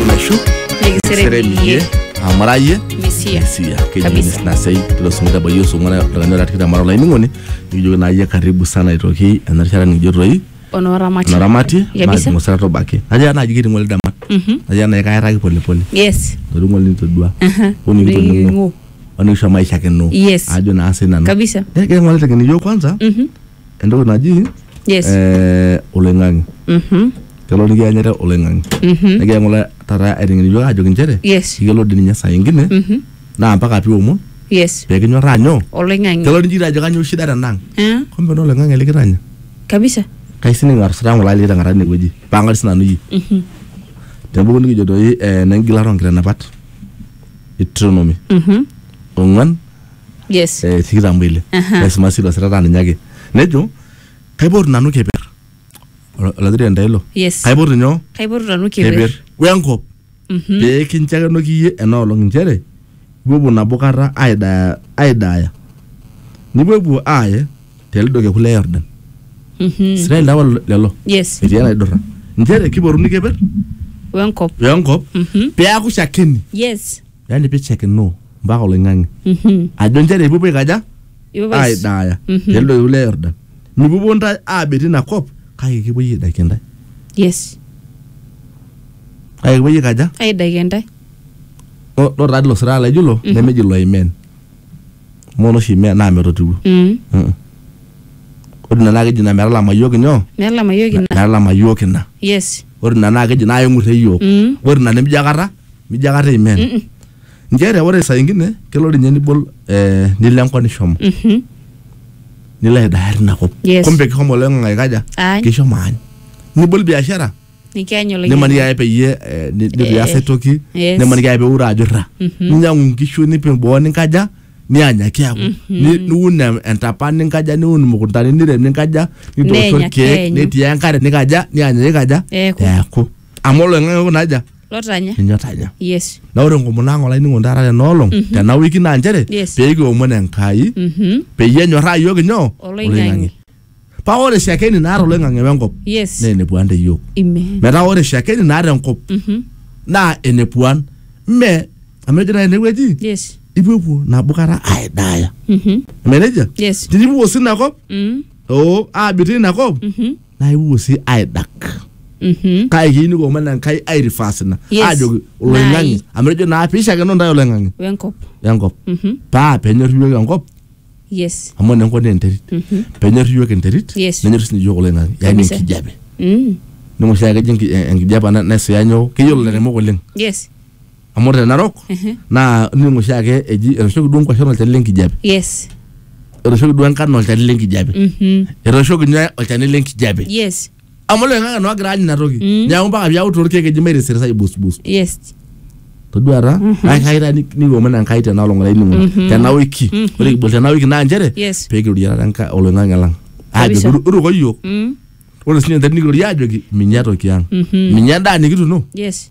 naishu nikiseremiyie amurayie misia sia keji Kabisa. Miss Nasei tilo singo tabayie osong'uan oltung'ani ora tikitam ara olainining'oni nikijoki naa iyie karibu sana aitoki ena rishata nikijo toi onoramati enaramati kabisa maatung'osera tobaki najo naaji kitii ng'ole damat Mhm. najo naaji kairraki polepole yes etotii ng'ole nitodua Aha. onikitoning'o Niking'u. onikisho maisha kino Yes. ajo naa sii nanu Kabisa. Eh, kegira ng'ole teng'eni iyiok kwanza Mhm. entoki naji Yes. eh, oloing'ang'e Mhm. kelo nikianyita oloing'ang'e Mhm. nikiya ng'ole taata aiteng'eni yiok ajoki nchere Yes. iyiolo dii ninye saa ingine Mhm. naa mpaka piomon Yes. pekinyorraa nyoo Oloing'ang'e. kelo nikijoki ajo kanyoo shida tenang Eh? kumbe naa oloing'ang'e likitanya Kabisa. kaisining atusutaa ng'ole aliki teng'ata inewueji pang'ari sinanu iyie Mhm. tebuku nikijo doi eh, nengilata onkitanapat Deuteronomy Mhm. ong'uan yes eh, tikitam oile Aha. naisuma silo sirata ninye ake nejo kaipotu nanu keper Ol- olatirani taa ilo Yes. kaipotu nyoo kaipotu nanu keper keper wenkop pee kinchakenoki iyie ena olong inchere ipuopuo nabo kata aidaya aidaya nipuopuo aaye telido keku le yordan israel lawa lelo- lelo yes etii enaidurra inchere kipotuni keper wenkop wenkop Mhm. peaku shakeni yes yani pichekinoo mpaka oloing'ang'e Mhm. ajo nchere ipupuo aikaja Ipupuo ais- aidaaya Mhm. telde oiu le yordan mipupuo ntae aabet ina kop kake kipuoi aidakie ntae yes kake kipuoi aikaja aidaki entae O- lo taa ilo siraa laijo ilo Mhm. nemeji loimen mono oshi me- naa metotiwuo Mm. Mm-mm. ore ina naa keji ina metalama iyiook inyoo Metalama iyiook ina. metalama iyiook ina Yes. ore ina naa keji naa eng'urre iyiook Mm. ore ina nemijo akata mijo akata imen Mm-mm. nchere ore saa ingine kelo ninye nibol eh, nilo enkop nishomo Mhm. nilo aidaya tina kop Yes. kumbe kishomo oloing'ang'e aikaja Aany. kishomo aany nibol biashara nikiany olainyang'ani. nimaniki ake peyie eh, ni- nitu ias ae toki yes. nimaniki ake peure ajo irra ninyiang'u nkishu nipik boo ninkaja nianya kiaku Ni- niun em- entapa ninkaja niun imukuntani nirem ninkaja nitoosho Nenya irkeek keenyu. netii enkare nikaja nianya nikaja Eeku. eeku amu oloing'ang'e kuna aja lotanya ninye otanya yes na ore enkomono ang olainingo taata tena olong tena wiki naa nchere Yes. pee kiomon enkai Mhm. peyie enyorraa iyiook inyoo Oloing'ang'e. paa ore shakeni naata oloing'ang'e wenkop Yes. naa enepuan te yiok Amen. metaa ore shakeni naata enkop Mhm. naa enepuan mme amu ejo naa enewueji Yes. ipuopuo nabo kata aidaaya Mhm. eme nejia Yes. tinipuo sii ina kop Mm. oo aabik tina kop Mhm. naa ipuo sii aidak Mhm. kake keyieu nikomon enkai airifas ina Yes. aajoki oloing'ang'e Naai. amu ejo naa piishakeno ntae oloing'ang'e Wenkop. enkop Mhm. paa penyor iyiok enkop Yes. amu ore enkop naa enterit penyor iyiook enterit Yes. nenyor sinye iyiook oloing'ang'e yaani Kabisa. enkijape Mm. ning'or sii akejo enki- eh, enkijape ana naisuya nyoo keyiolo ilairemok oleng Yes. amu ore te narok naa ning'or oshi ake eji etooshoki duo nkuashen olchani lenkijape Yes. etooshoki duo enkano olchani lenkijape Mhm. etooshoki nyoo olchani lenkijape Yes. amu loing'ang'e naa ogira aany ina toki Mm. neeku mpaka piaku torkeek eji mairisirisa aibusbus yes toduata naa kai taa ni- niomon enkai tena olong olainining'oni tena wiki ore kibol tena wiki naa nchere Yes. peekirorie taata enkai oloing'ang'e lang aajoki Kabisa. "Ru- ruko yiok mm. ore sinye enterit nikirorie aajoki minya toki ang minya endaa nikituno yes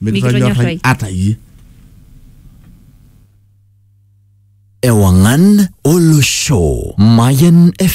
Mikitonyorrai. ata iyie. Ewangan Olosho Mayan FM.